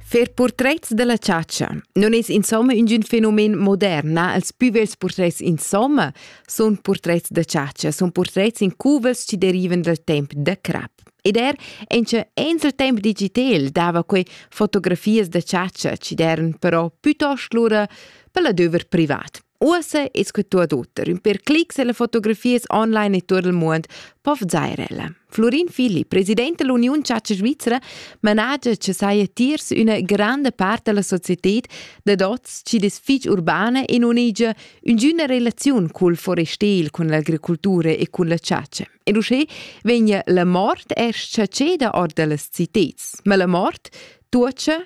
Fer purtrets da la chatscha non es insomma üngün fenomen modern, na? Els pü vels purtrets insomma sun purtrets da chatscha, sun purtrets in cuvels chi derivan dal temp da crap. Ed er incha enz'el temp digitel dava quei fotografias da chatscha chi d'eran però pütost lura pel adöver privat. Uossa es que tuot oter. Ün per clics e le fotografias online e tuot il muond po vzair ella. Florin Filli, president dell'Union Ciaca Svizzera, managia che saja tiers üna grande part della società da dots chi des fich urbana e non hegia üngüna relaziun col forestel, con l'agricoltura e con la ciaca. E uschè vegna la mort erst ciaceda or dellas citats. Ma la mort tuocha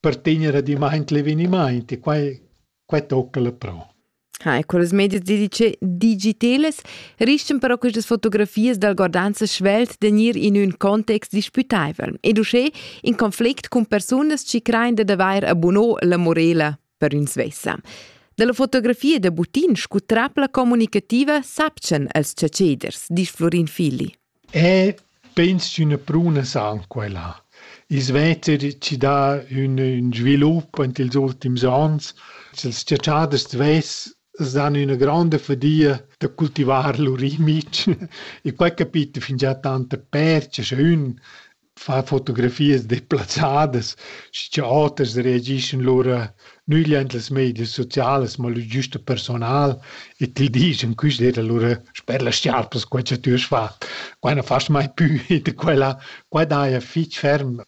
per tenere adimmaint l'evenimaint e quai, quai tocca la pro. Ha, e con las medias digitelas riscan però questas fotografias dal Gordanza svelt de gnir in ün context disputaivel ed uschè in conflict cun persunas chi crain dad avair abunò la morela per ün svessa. Dalla fotografia da Butin scu trapla comunicativa sapchan els chatscheders, disch Florin Filli. Eh, pens ch'üna pruna san quai là. I svezzer chi dà ün ün svilup int ils ultims ons. Sels chatschiaders d'vess s'dan üna gronda fadia da cultivar lur imic. I quai capita fingià tanta percha scha ün far fotografias deplazzadas, sche oters reagischan lura nügl ant las medias socialas, ma lur giusta personal e ti dischan, quist era lura sper las schiarpas quai cha tü hast fat, quai non fast mai pü e da quella, quai daja fich ferm.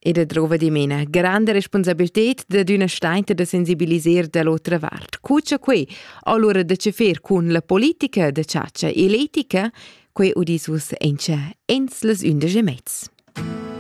E da drova dimena, granda responsabilität dad üna stainta da sensibiliser da l'otra vart. Cu cha quei, allora da che fer cun la politica, da chatscha e l'etica, Quei udis uss encha ins las undisch e mez.